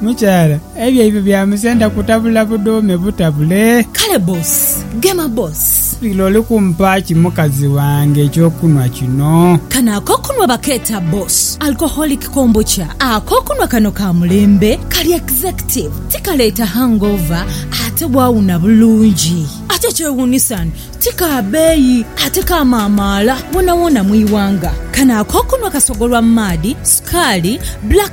Mukyala, ebyo ebyo bya musenda kutabula budhuume butabule. Kale boss, gema boss. Lira oli kumpa ki mukazi wange eky'okunhwa kino? Kano ak'okunhwa bakeeta boss alcoholic kombucha. Ak'okunhwa kano ka mulembe, kali executive, tikaleeta hangover ate bwawuna bulungi. Ate ekyewuunisan ti ka beeyi ate kamaamaala woonawoona mu ighanga. Kano ak'okunhwa kasogolwa maadhi, sukaali, black.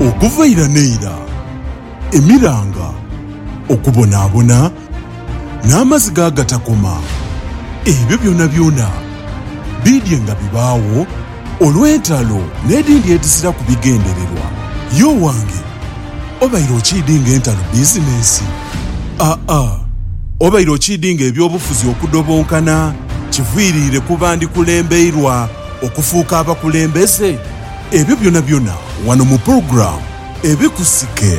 Okuva ira n'eira, emiranga, okubonaabona, n'amaziga agatakoma, ebyo byonabyona biidye nga bibaagho olw'entalo n'edindi edhiziraku bigendererwa, ye owange. Obaire okiidinga entalo bizinensi? Aa. Obaire okiidinga eby'obufuzi okudobonkana kiviiriire ku bandikulembeirwa okufuuka abakulembeze? Ebyo byonabyona wano mu pulogulaamu Ebikusike.